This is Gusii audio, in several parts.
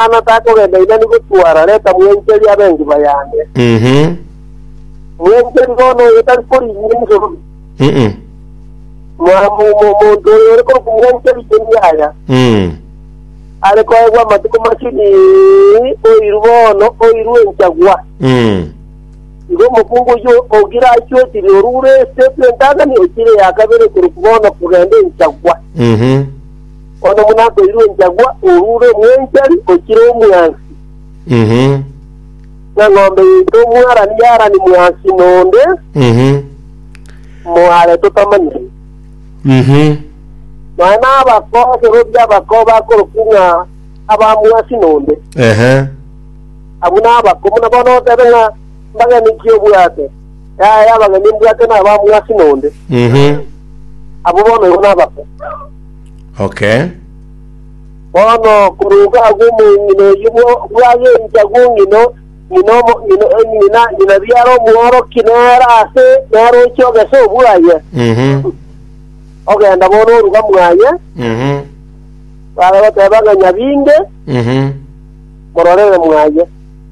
Yohana takogenda inani gotwara, reta mwencheri abe engiba yane. Mhm. Omwencheri bono oyo tari korinyia enchorobe, Mm-mm. ma- mo- mo- omonto oyo ore korokwa omwencheri cheni yaya, Mm. are koegwa amatuko masini, oiru bono, oiru enchagwa. Mm. Igo omokungu oyio ogira achwetire orure ase bw'entang'ani ochire ya kabere korokwa bono kogenda enchagwa. Mhm. Onye buna akoirwe enchagwa, orure omwenchari, ochire omwansi. Mhm. Na ng'ombe yaito omwarani yarani mwansi nonde, Mhm. moare totamanyeti. Mhm. Nonya nabakosorobia abako bakorokwa ng'a abamwansi nonde. Ehe. Abwo nabako buna bono otebe ng'a mbagene ki obwate? Yaya y'abageni mbwate nabamue ase nonde, Mhm. abwo bono igo nababe. Okay. Bono koruga agwo omong'ina oyio bwo- bwagencha gwong'ina ng'ina omo- ng'ina- eh, ng'ina ng'ina biara omworoki nere ase nere oche ogese obwaye Mhm. ogenda bono oruga mwaye Mhm. bare goteba ng'a nyabinge Mhm. mororere mwaye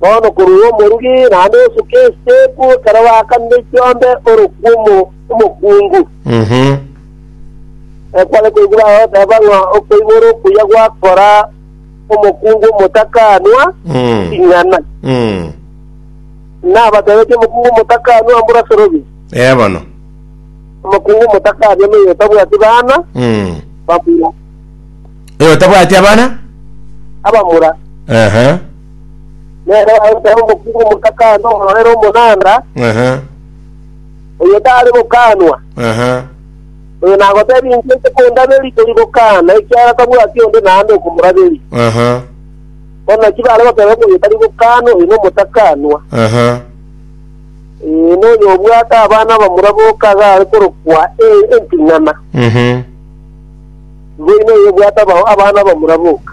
Bono korwa omorugi naende osuka eseku ekero bakanire chiombe ore kw'omo omokungu, ekware koigwa bagoteba ng'a okoibora okuya gwakora omokungu omotakanwa ing'ana. Nabatebetie omokungu omotakanwa mbura sorobia. Ee bono. Omokungu omotakanwa noyo otabwati bana, bamura, Oyo otabwati abana? abamura. Ehe. Nere ogoita omokungu omotakane omororere omonanda, Ehe. oyo tare gokanwa. Ehe. Oyo nagotebia inche inche kondaberia tori gokana, ekiagera tabwati onde naende okomoraberia. Ehe. Bono naki bare goteba ng'a oyo tari gokanwa, oyo nomotakanwa. Ehe. Ee, noyo obwate abana abamura boka iga are korokwa e- emping'ana. Mhm. Boino oyo obwate aba- abana abamura boka.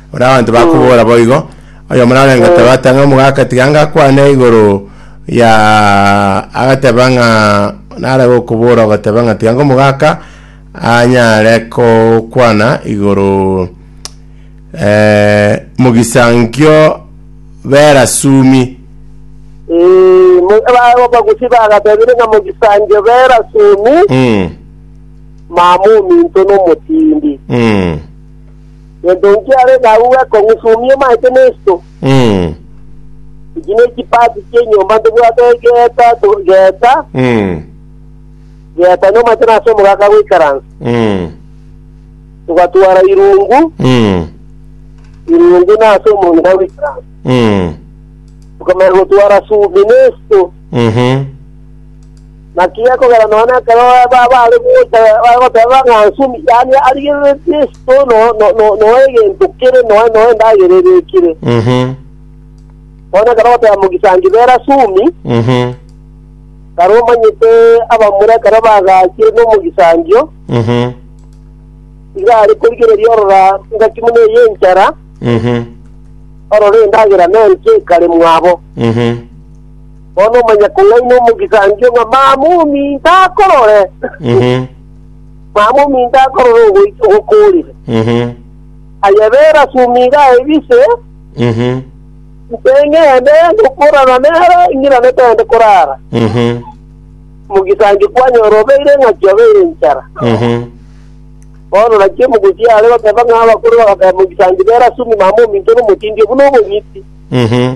Buna abanto bakobora boigo, oyomo narenge Tabata ng'a omogaka tiga ngakwane igoro ya agateba ng'a nare gokobora ogoteba ng'a tiga ng'omogaka anyare kokwana igoro eh, mogisankio bera sumi Eh, mo- aba- abagusi bagatebire ng'a mogisanje bera sumi mm, mama ominto nomotindi mm. Gento inki are nago gwekong'usumia omanyete nesto? Mm. Echi nechipasi chi'enyomba ntobwate geeta to- geeta, Mm. geeta nomanyete nase omogaka goikaransa. Mm. Togatwara irungu, Mm. irungu nase omong'ina goikaransa. Mm. Tokamanya gotwara sumi nesto, Mhm. Naki gekogera nonya ekero baare gocha bare goteba ng'a nsemi, yaani arigereretie esito noe egento kere noe noe endagera ebekire. Mhm. Nonya ekero goteba mogisangi bera asumi, Mhm. kare omanyete abamura ekero bagachire nomogisangio, Mhm. iga are korigereria orora engaki buna eye enchara, Mhm. orore endagera nenki ekare mwabo. Mhm. Bono manya kong'aini omogisangio ng'a mama ominto akorore, Mhm. mama ominto akorore ogoita ogokoorire. Mhm. Aye bera ase omiga aye bise, Mhm. inse ng'ende ngokorana nere, ing'irane togende korara. Mhm. Omogisangio kwanyora obeire eng'aki obeire enchara. Mhm. Bono naki omogochia are goteba ng'a abakure bagateba omogisangio bera ase omi mama ominto nomotindi obu nobong'iti. Mhm.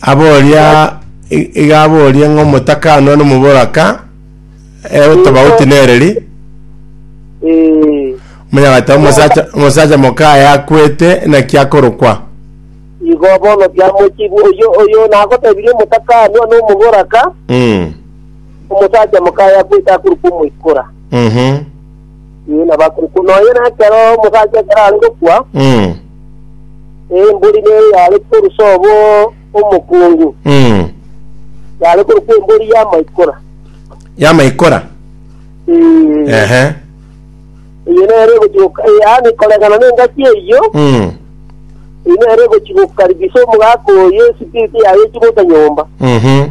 Aboria i- iga aborie ng'a omotaka anoe nomoboraka e otobauti nereri Eh, monyagata omosacha omosacha mokaye akwete naki akorokwa igo bono kiamochibu oyo oyo nagotebirie omotaka anoe nomoboraka mm. omosacha mokaye akwete akorokwa omoikora mhm Ee, nabakuku. Nonya nekero omosacha ekero are gokwa, Mm. ee, embori nere yare korusa obo omokungu, Mm. yare korokwa embori y'amaikora. Yamaikora. Ee, Ehe. eye nere egochigoka, ee, yaani koregana n'engaki eyio, Mm. eye nere egochigokaribisa omogaka oyo esipiriti yaye echigota nyomba. Mhm.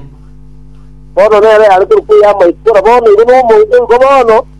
bono nere yare korokwa eyamaikora bono igo nomoito igo bono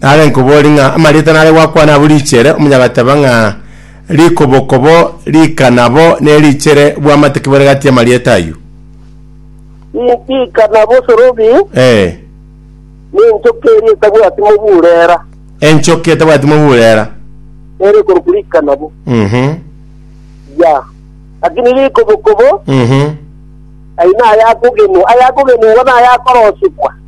Nare nkobori ng'a amarieta nare gwakwana abwo richere, omonyagateba ng'a rikobokobo rika nabo ne richere bwamate ki bore gati y'amarieta ayio? I- Ika nabo sorobi, Eh, nenchoka eria etabwati moburera, enchoki etabwati moburera. ere ekorokwa rika nabo. Mhm, Ya. Lakini rikobokobo, mhm. aye nayakogenwa, ayakogenwa igo nayakorosikwa.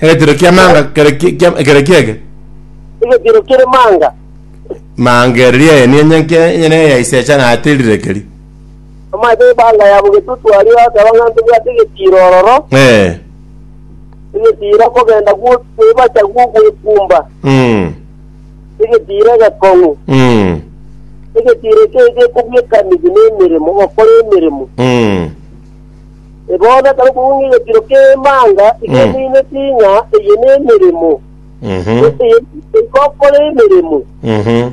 Egetiro kia manga kere ki- kia- ekero kiege. Egetiro kere manga. Manga ere riaye niye nyanke enyene ya ise echanate rirekeri. Amache y'emanga yabo getutu aria akaba ng'a ntobwate egetiro ororo, Eh. egetiro okogenda gwo- kwebacha gw'ogwekumba, Mm. egetiro egekong'u, Mm. egetiro ekio gekobua ekanigi na emeremo, gokora emeremo. Mm. E bono ekero okogung'ia egetiro k'emanga iga Mhm. omoineti ng'a eye nemeremo, Mhm. gose eye igokora emeremo. Mhm.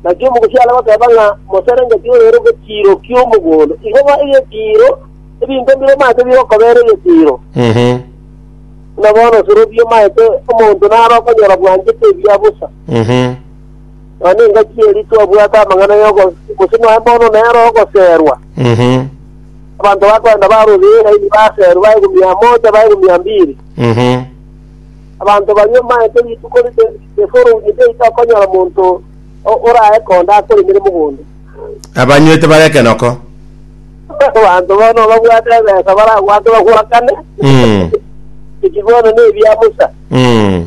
Naki omogosi are goteba ng'a moserengetie orere egetiro ki'omogondo. Igo ba egetiro, ebinto mbire omanyete bigokobera egetiro. Mhm. Buna bono osorobia omanyete omonto naro okonyora bwanchete ebiya bosa. Mhm. Nonya engaki eri twabwate amang'ana y'ogo- gose nonya bono nere ogoserwa. Mhm. abanto bakwenda barorire eraini baserwe baegwa mia moja, baegwa mia mbiri. Mhm. Abanto baria omaete rituko rite- riforongire riaito akonyora monto o- oraye konde akoremire mogondo. abanywete bare ekenoko Abanto bono babwate ebesa baragwate bagwakane, Mm, ekibono nebia Musa. mm.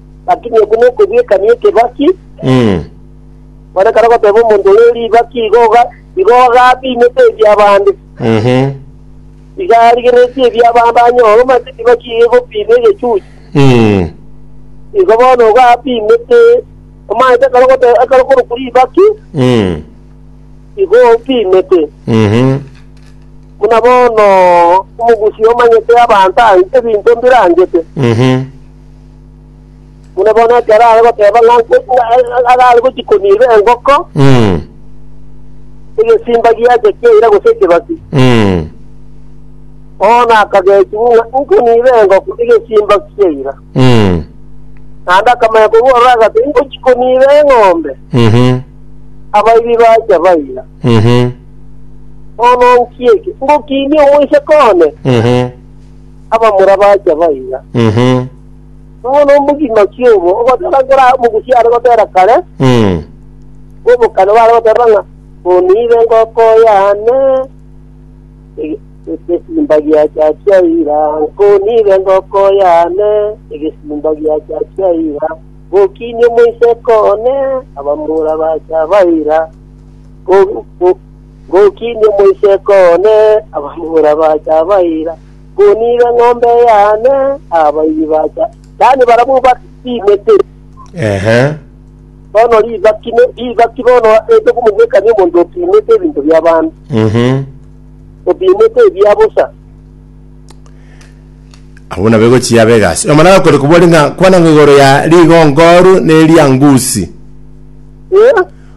Lakini oko nokobiekania ekebaki, Mm. kore kare ogoteba omonto oyo ribaki igo oga- igo agabiinete ebi'abande, Mhm. iga arigereretie ebi'abande anyore omanyete ribaki iga egobiina egechuchu. Mm. Igo bono igo abiinete, omanyete ekero ogote- ekero okorokwa ribaki, Mm. igo obiinete. Mhm. Buna bono omogusi omanyete abanto a- ebinto mbirangete, Mhm. Buna bono ekero are goteba ng'a agare gochia koniira engoko, Mm. egesimba giacha kiaira gose ekebasi. Mm. Bono akagechiwa ng'a nkoniira engoko, egesimba kiaira. Mm. Naende akamanya korwa ororo agati ngochia koniira eng'ombe, Mhm. abaibi bacha baira. Mhm. Bono nkieke, ngokinia omoiseke one, Mhm. abamura bacha baiga. Mhm. Bono omogima-ki obo ogoteba nkora omogusi are gotera kare, Mm. bobokane bare goteba ng'a oniire engoko yane ege- egesimba giacha chia ira, nkoniire engoko yane egesimba giacha chia ira, gokiini omoiseke one abamura bacha baira, Ko- ko- Ngokinie omoiseke one, abamura bacha abaira, Ngoniire eng'ombe yane, abairi bacha. Yaani barabwo batinete Ehe. bono ribaki ne- ribaki bono ase okomogwekania omonto opimete ebinto bi'abanto, Mhm. opimete ebia bosa. Abwo nabo egochia abe egasi. Omwana gakore kobori ng'a kwana ng'a igoro ya rigongo oru ne ria ngusi. Eh,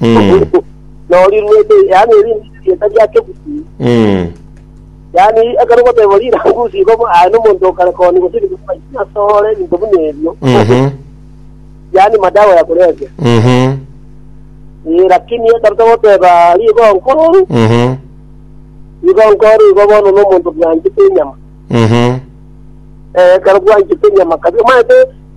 Mm. noriruete yaani erindi rieta riakebuti Mm. yaani ekero goteba rirangusi igo bo aye nomonto okare koni gose asore ebinto buna ebio Mhm. yaani madawa ya kulevya Mhm. Eh, lakini ekero togoteba rigo nkoru Mhm. igo nkoru igo bono nomonto bwanchete enyama Mhm. Eh, ekero bwanchete enyama kabisa omanyete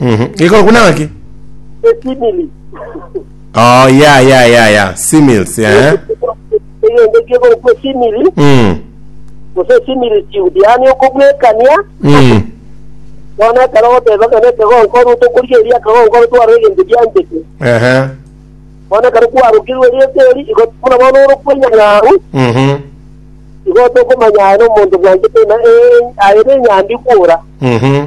Mhm. Iko kuna ng'aki? esimili Oh, ya ya ya ya. Simils, eh. egento kiogokwa esimili Mm. gose esimili siudi yaani okobwekania Mm. bono ekero ogoteba ng'a nekegonkoru tokoria eria akagonkoru twarora egento gianchete Ehe. bono ekero kwarokirwe riete eri igo buna bono ore kwenya ng'aru Mhm. igo tokomanya aye na omonto bwanchete na eh, aye nenyambi kwora Mhm.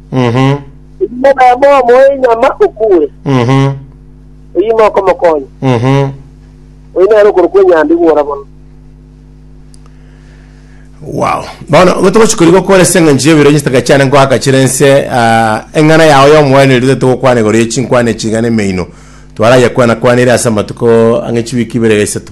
Mhm. Oyio nabo omoe inyama okuure, Mhm. oyio nokomokonya, Mhm. oyio nere okorokwa enyambi gwora bono. Wow. Bono igo togochi kori gokora ase eng'encho ya ebiroche chitaka chiane nkoaka chire ense ah, eng'ana yao y'omoeneri tete gokwana igoro ye chinkwana echiga na emeino twarayekwana kwana ere ase amatuko ang'e chiwiki ibere gaisato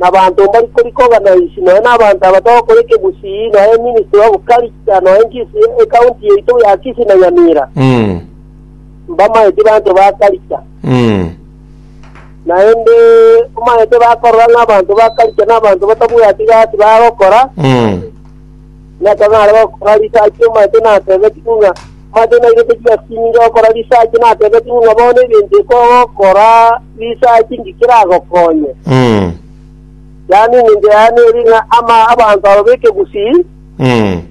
nabaanto mbari kori koba naisi, nonya nabaanto aba tokoreka ebusii, nonya eministry of culture, nonya enchisi ye ecounty yaito ya Kisii na Nyamira, Mm. mbamaeti baanto ba culture. Mm. Naende omaete bakorora ng'a abanto ba culture nabaanto batabwati gasi bagokora, Mm. Naki onye are gokora risachi omanyete natebetigwe ng'a omanyete nairete chigasinyo gokora risachi natebetigwe ng'a bono egento eke ogokora risachi inki keragokonye. Mm. Yaani engencho yaye neri ng'a ama abanto aba b'ekegusii Mm.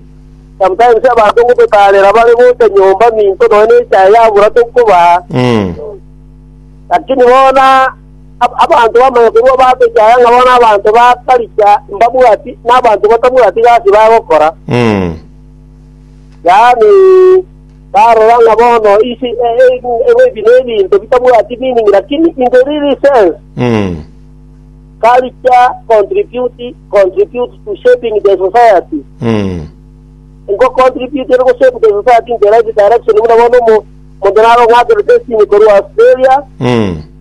sometimes abanto ngototarera bare gocha nyomba minto nonya nechae yabura tokobaa Mm. lakini bono Abanto bamanya korwa baatokia aya ng'a bono abanto ba Perisia mbabwati, na abanto batabwati gasi bagokora, yaani, barora ng'a bono isi ebi nebinto bitabwati meaning, lakini in the real sense, culture contribute contribute to shaping the society. Nko contribute ere go shape the society in the right direction, buna bono omo- omonto narong'akerete esini korwa Australia,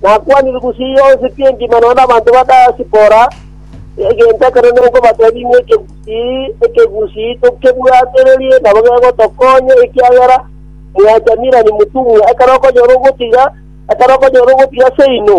Nakwanire gusii yonsi pi engima nonya nabanto ba Diaspora, egento ekero nenkobatebia inwe ekegusii ekegusii tokebwaatererie nabo gegotokonya, ekiagera mwachamire ani motumwa, ekero okonyora ogotiga, ekero okonyora ogotiga seino.